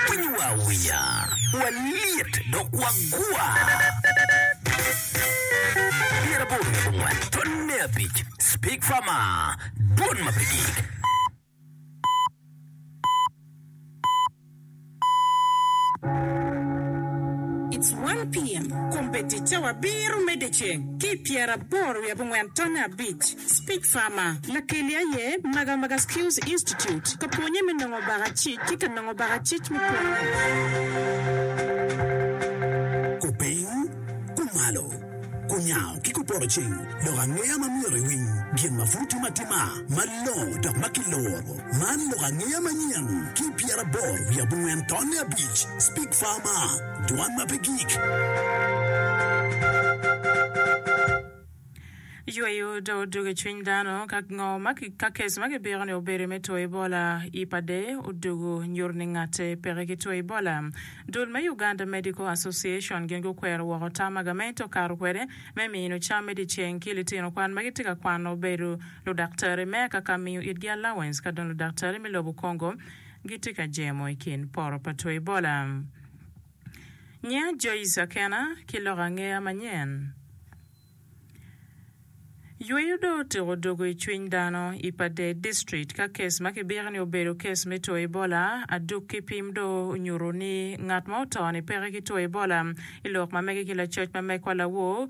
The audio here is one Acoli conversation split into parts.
Pwony wa wiya walyet dok wagwa. Pyeraboro nyo abongwen twon me abic Speak Farma Dwon ma pe gik. It's 1 PM, Kombeddi cawa abiro medde ceng ki i pyeraboro wiye abongwen twon me abic. Speech Farmer, Lakeli aye Magamaga Skills Institute ka pwonye me nongo baka cic ki ka nongo baka cic me pwonye. Kupiny, kumalo, kunyango ki kupoto ceng lok angeya ma myero iwiny gin ma pud timo atima malongo dok ma kiluro. Man lok angeya manyen ki pyeraboro wiye abongwen tonne abic. Speech Farmer, Dwan ma pe gik. Yweyo dong odwogo i cwiny dano ka ngo ma ka kes ma kipiko ni obedo me two Ebola i Padee odwogo nyuto ni ngatte peke ki two Ebola. Dul me Uganda Medical Association gin gukwero woko tam ma gamente okato kwede me mino cam me dyeceng ki litino kwan ma gitye ka kwano bedo ludaktari me aka ka miyo itgi allowance ka dong ludaktari me lobo Congo gitye ka jemo i kin poto pa two Ebola. Ngeya Joyce Akena ki loko angeya manyen. Yweyo dong otyeko dwogo i cwiny dano i Padee District ka kes ma kibiko ni obedo kes me two Ebola aduk ki pim dong onyuto ni ngat ma oto ni peke ki two Ebola. I lok ma mege ki lacoc ma mekwa Lawoo,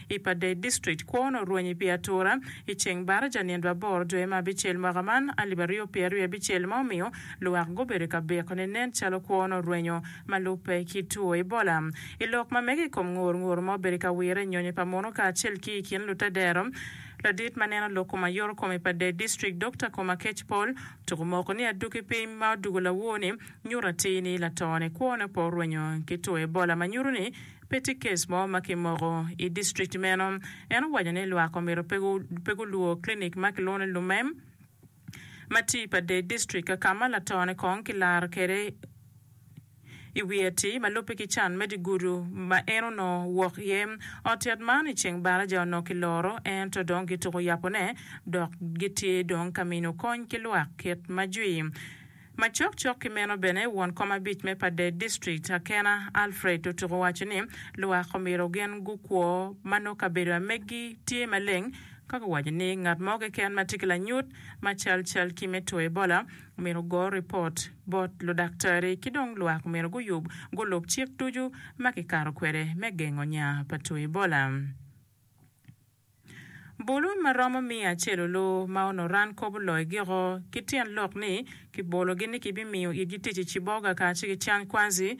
I Padey District, kwono orwenye pi atura i ceng baraja nino aboro dwe ma abicel mwaka man alip aryo pyera ryo abicel ma omiyo lwak gubedo i kabiko ni nen calo kwono orwenyo ma lubbe ki two Ebola. I lok ma mege i kom ngur ngur ma obedo ka wire, nyonyo pa muno kacel ki i kin lutadero, ladit ma neno lok kom ayoro kom i Padey District Dokta Komakech Paul otuko moko ni aduki piny ma odugo lawor ni nyuto atir ni latone kwono pe orwenyo ki two Ebola ma nyuto ni Pe tye kes mo ma kimoko i distrikt meno. En owaco ni lwak omyero pe gulwor klinik ma kilwongo ni Lumem ma tye i Padey District kakama latone kong kilaro kwede i wi atir ma lubbe ki can me dye gudu ma en onongo wok iye. Ot yat man i ceng baraja onongo kiloro ento dong gituko yabone dok gitye dong ka mino kony ki lwak kit ma jwi. Macok cok ki meno bene, won kom abic me Padee District, Akena Alfred otuko owaco ni lwak omyero gin gukwo ma nongo kabedo ameggi tye maleng ka guwaco ni ngat mo keken ma tye ki lanyut ma cal cal ki me two Ebola omyero ogo ripot bot ludaktari ki dong lwak omyero guyub gulub cik ducu ma kikato kwede me gengo nya pa two Ebola. Bulu ma romo miya acel olu ma onongo ran kobo loyo giko ki tyen lok ni kibologi ni kibimiyo itgi tic i ciboga kace ki cany kwanzi.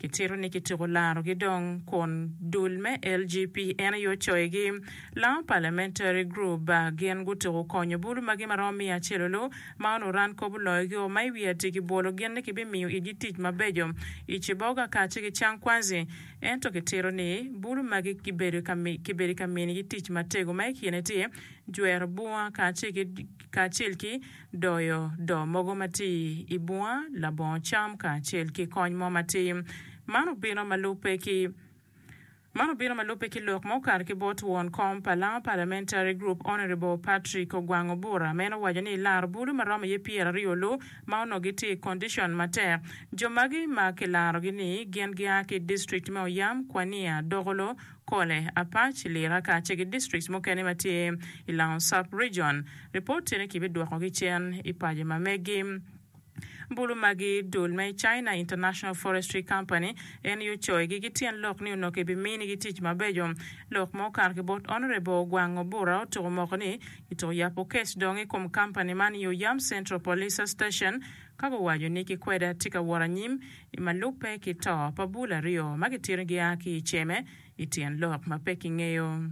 Kitito ni kitiko larogi dong kun dul me LGP en aye ocoyo gi. Lango Parliamentary Group gin gutuku konyo bulu magi ma romo miya acel olu ma onongo ran kobo loyo giko ma iwiye atir kibolo gin ni kibimiyo itgi tic mabeco i ciboga kace ki cany kwanzi. Ento kitito ni bulu magi kibedo i ka minigi tic matego, ma i kine tye jwero bunga kacel ki doyo doo mogo ma tye i bunga, labongo cam kacel ki kony mo matir. Man obino ma lubbe ki lok ma okato ki bot won kom pa Langa Parliamentary Group Honourable Patrick Ogwang Obura ma en owaco ni laro bulu ma romo iye pyeraryo lu ma onongo gitye i kondicon matek. Jo magi ma kilarogi ni gin gia ki district me Oyam, Kwania, Dokolo, Kole, Apac, Lira kacel ki districts mukene ma tye i Lango Sub Region, ripoti ni kibidwokogi cen i paco ma megi. Bulu magi dul ma i China International Forestry Company, NU, coyogi ki tyen lok ni onongo kibiminigi tic mabeco. Lok ma okato ki bot Honourable Gwang Obura otuko moko ni I tuk yabo kec dong i kom kampani man yo Yam Central Police Station ka guwaco ni kikweda tye ka wot anyim i ma lubbe ki to pa bul aryo ma gitito gia ki i ceme i tyen lok ma pe kingeyo.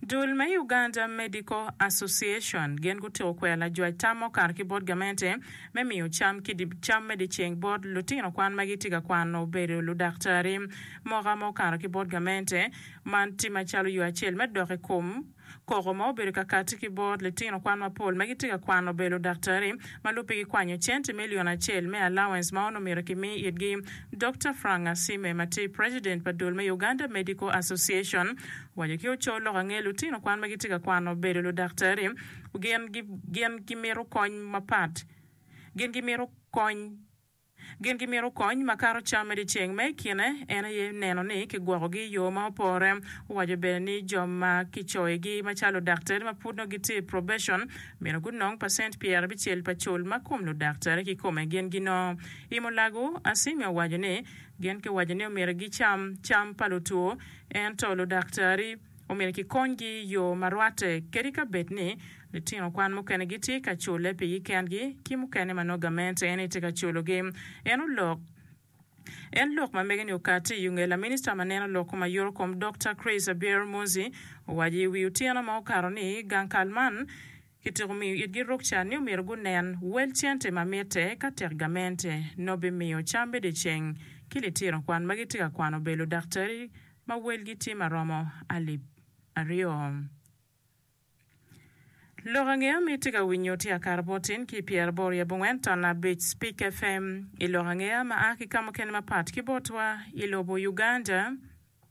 Dul me Uganda Medical Association gin gutiko kwero lajwac tam ma okato ki bot gamente me miyo cam ki cam me dyeceng bot lutino kwan ma gitye ka kwano bedo ludaktari. Moka ma okato ki bot gamente, Man tye macalo yo acel me dok i kom koko ma obedo kakati ki bot litino kwan mapol ma gitye ka kwano bedo ludaktari ma lubbe gikwanyo centi milion acel me allowance ma onongo myero kimi itgi. Dokta Frank Nasime ma tye president pa dul me Uganda Medical Association owaco ki oco lok ange lutino kwan ma gitye ka kwano bedo ludaktari gin gin gimito kony mapat gin gimito kony Gin gimito kony makato cam me dyeceng ma i kine, en aye neno ni kigwokogi i yo ma opore. Owaco bene ni jo ma kicoyogi macalo ludaktari ma pud nongo gitye i probation myero gunong pacent pyerabicel pa cul ma kom ludaktari kikome gin ginongo. I mulago, Asimi owaco ni, Gin kiwaco ni omyero gicam cam pa lutwo, ento ludaktari. Omyero kikonygi i yo ma rwatte, kadi ka bed ni litino kwan mukene gitye ka cule pigi kengi ki mukene ma nongo gamente en aye tye ka culogi. En olok En lok ma mege-ni okato i unge laminista ma neno lok kom ayuto kom Dokta Chris Abier Munzi owaco i wi otyeno ma okato ni, Gang kal man, Kityeko miyo itgi rukca ni omyero gunen wel cente ma mitte ka tek gamente nongo bimiyo cam me dyeceng ki litino kwan ma gitye ka kwano bedo ludaktari ma welgi tye ma romo alip aryo. Lok angeya ma itye ka winyo tye Akara Botin ki pyeraboro i abongwen ton abic Speak FM i lok angeya ma a ki ka mukene mapat ki botwa i lobo Uganda.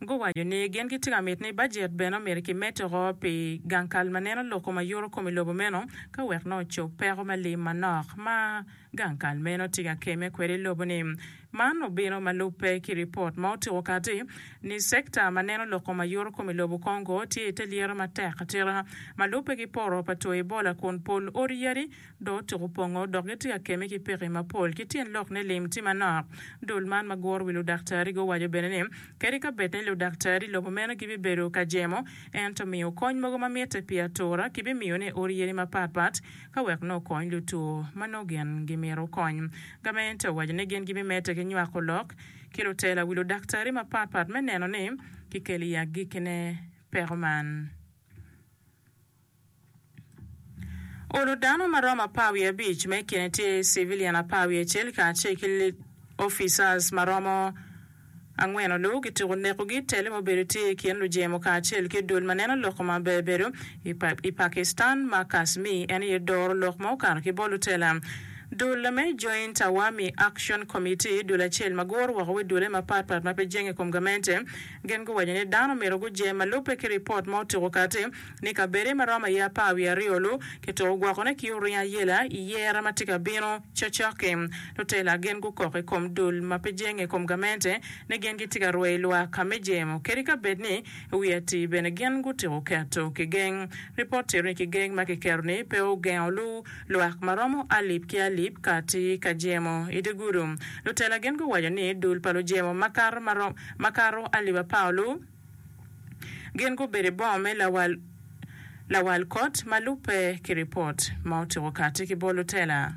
Guwaco ni gin gitye ka mit ni bajet bene omyero kimed woko pi gang kal ma neno lok kom ayuto kom i lobo meno ka wek nongo cob peko me lim manok ma gang kal meno tye ka kemme kwede i lobo-ni. Man obino ma lubbe ki ripot ma otuko kati ni cekta ma neno lok kom ayuto kom i lobo Congo tye i te lyero matek atika ma lubbe ki poto pa two Ebola kun pol odi yadi Dong otyeko pongo dok gitye ka kemme ki pekki mapol. Ki tyen lok ni lim tye manok, dul man ma guro wi ludaktari guwaco bene ni kadi ka bed ni ludaktari i lobo meno gibibedo ka jemo ento miyo kony mogo ma mitte pi atura kibimiyone odi yeni mapat pat ka wek nongo okony lutwo ma nongo gin gimito kony. Gamente owaco ni gin gibimedde ki nywako lok ki lutela wi ludaktari mapat pat me neno ni kikelo i agikkine peko man. Olo dano ma romo apar wiye abic, ma i kine tye civilian apar wiye acel kacel ki lit officers ma romo angwen oluwu ki tuku nekogi, tele ma obedo tye i kin lujemo kacel ki dul ma neno lok ma ber bedo i Pakistan ma Kashmir en aye doro lok ma okato ki bot lutela dul me Joint Awami Action Committee, dul acel ma guro woko wi dule ma pat pat ma pe jenge i kom gamente, gin guwaco ni dano omyero gujem ma lubbe ki report ma otuku kati. ni kabedde ma romo aye apar wiye aryo-lu kitoko gwokone ki oringo ayela i yere ma tye ka bino cokcok-ki. Lutela gin gukok i kom dul ma pe jenge i kom gamente ni gin gitye ka rweyo lwak ka me jemo kadi ka bed ni i wi atir bene gin gutyeko keto kigeng. Ripot tito ni kigeng ma kiketo ni pe ogengo lu lwak ma romo alip ki alip ka ti ka jemo i dye gudo. Lutela gin guwaco ni dul pa lujemo makato ma kato alip apar-lu, gin gubedo i boma me lawal lawal kot ma lubbe ki ripot ma otuko kati ki bot lutela.